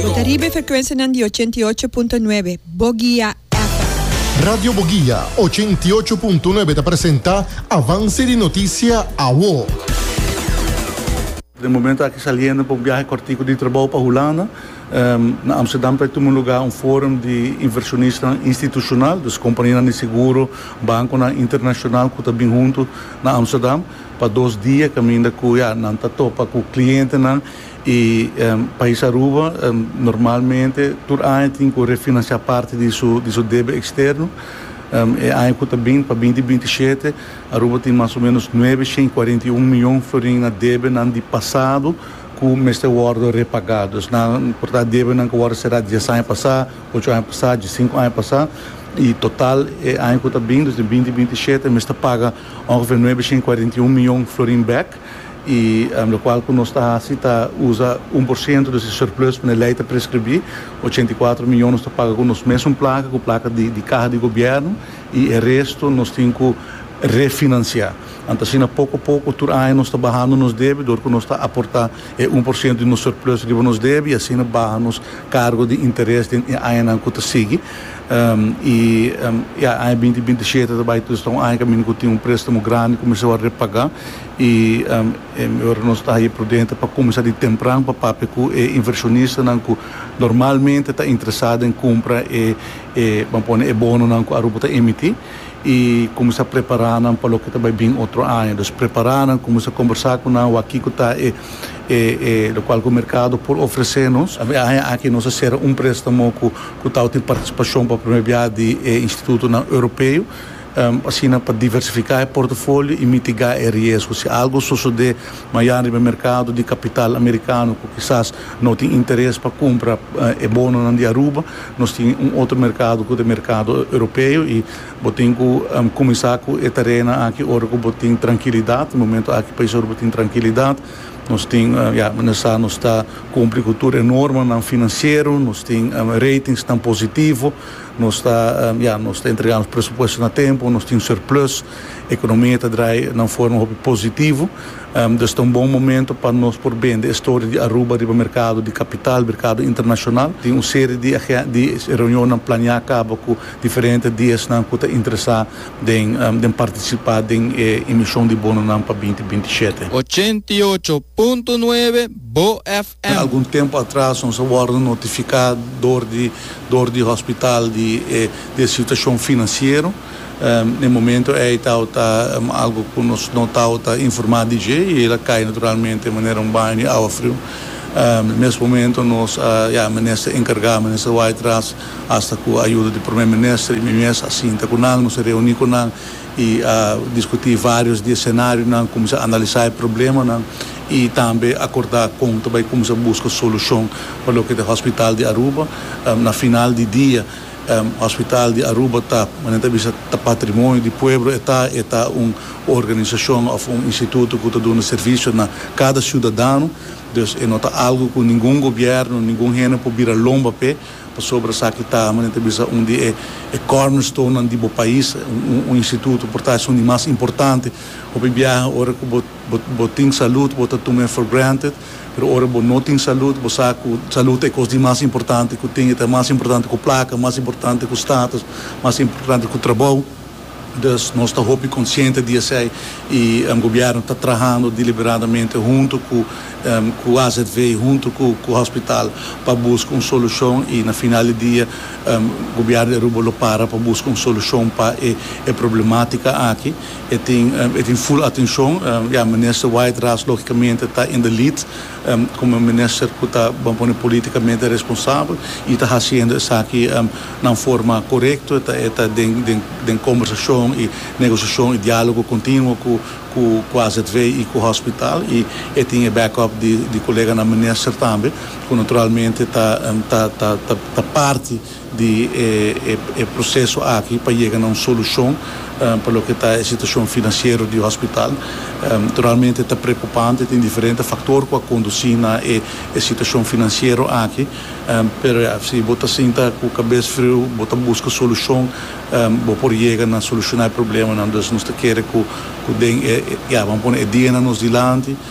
Bo ta riba e frekuensianan di ochenta i ocho punto nuebe Bogia FM. Radio Bogia ochenta i ocho punto nuebe ta presenta Avance di Noticia Awo. Den e momento aki saliendo pa un biahe cortico di trabao pa Hulanda. Na Amsterdam ta tuma lugar un forum di inversionistan institucional, dus companianan di seguro, banconan internacional cu ta bin hunto na Amsterdam pa dos dia caminda cu ya nan ta topa cu clientenan. E Pais Aruba normalmente tur aña tin cu refinancia parti di su di su debe externo. E aña cu ta bini pa binti binti shete Aruba tin mas o menos nuebe shen cuarenta i un miyon florin na debenan di pasado cu mester wordo repagado. Dus nan por ta debenan cu wordo cera dies aña pasa, ocho aña pasa, diecinco aña pasa. Y total e aña cu ta bini, dus di binti binti shete mester paga ongeveer nuebe shen cuarenta i un miyon florin bek. y lo cual cu nos ta haci ta uza un por ciento di su surplus pa e ley ta prescribi, ochenta y cuatro miyon nos ta paga cu nos mesun placa, cu placa di caha di gobierno y e resto nos tin cu refinancia. Anto asina poco poco tur aña nos ta bahando nos debi dor cu nos ta aporta e un por ciento di nos surplus riba nos debi y asina baha nos cargo di interes den e añanan cu ta sigui. I e aña binti binti shete ta bai tur sta un aña kaminda ku tin un prestamo grandi ku mi sa wòrdu repagá. I mi ora nos ta haya prudente pa kuminsá di tempran pa papia ku e invershonistanan ku normalmente ta interesá den kumpra e e ban pone e bononan ku Aruba ta emití i kuminsá prepará nan pa loke ta bai bin otro aña. Dus prepará nan, kuminsá kombersá ku nan, wak ki ku ta e e e lokual ku merkado por ofresé nos. E aña aki nos a sera un prestamo ku. ku ta obtin partisipashon pa promé biaha di e institutonan Europeo, asina pa diversifiká e portofolio i mitigá e riesgo si algu sosodé mañana riba e merkado di kapital amerikano ku kisas no tin interes pa kumpra e bononan di Aruba. Nos tin un otro merkado ku ta e merkado Europeo i bo tin ku kuminsá ku e tarenan aki ora ku bo tin trankilidat. Momentu aki paisnan Aruba tin trankilidat. Nos tin, ya, mende sa nos ta cumpli cu tur e normanan financiero, nos tin ratingsnan positivo, nos ta, ya, nos ta entrega nos presupuesto na tempo, nos tin surplus, economia ta draai na un forma hopi positivo. Dus ta un bon momento pa nos por bende e storia di Aruba riba mercado di capital, mercado internacional. Tin un serie di di reunionnan plania caba cu diferente di esnan cu ta interesa. den partisipá den e emishon di Bononan pa binti binti shete. Ochenta i ocho punto nuebe Bo FM. Algun tempu atras nos a wòrdu notifiká dor di dor di hospital di e situashon finansiero. E momento ei tabata algu ku nos no tabata informá di dje i el a kai naturalmente manera un baño di awa friu. Mes momento nos a menester enkargá, menester wak atras Hasta cu ayuda di Prome Minister y mi mes a sinta cu nan, nos a reuni cu nan y a discuti varios di e scenarionan, cuminsa analisa e problemanan y tambe acorda con ta bay cuminsa busca solucion pa loke ta e hospital di Aruba. Na final di dia, Hospital di Aruba ta, como nan ta bisa, ta patrimonio di pueblo, e ta, e ta un organisacion of un instituto cu ta duna servicio na cada ciudadano, dus e no ta algo cu ningun gobierno, ningun hende por bira lomba p'e. Pasobra esaki ta, manera ta bisa, un di e cornerstonenan di bo pais, un instituto por ta esun di mas importante. Hopi biaha ora ku bo bo tin salud bo ta tume for granted, pero ora bo no tin salud bo sa ku salud ta e kos di mas importante ku tin, e ta mas importante ku plaka, mas importante ku status, mas importante ku trabou. Dus nos ta hopi konsiente di esei i gobièrnu ta trahando diliberadamente huntu ku AZV i huntu ku hospital pa buska un solushon i na final di dia gobièrnu di Aruba lo para pa buska un solushon pa e problematika aki. E tin ful atenshon. Ya, Minister White Ras logikamente ta in the lead. komo un minister ku ta bon pone politikamente responsabel i ta hasiendo esaki na un forma korekto, e ta den kombersashon i negosiashon i diálogo kontinuo ku azv i ku hòspital i e tin e backup di koleganan minister tambe ku naturalmente ta parti. di e proseso aki pa yega na un solushon pa loke ta e situashon finansiero di hospital. Naturalmente ta preokupante, tin diferente faktor ku a kondusí na e situashon finansiero aki, pero ya, si bo ta sinta ku kabes friu, bo ta buska solushon, bo por yega na solushoná e problemanan. Dus nos ta kere ku den e, ya, bo a pone e dianan nos dilanti.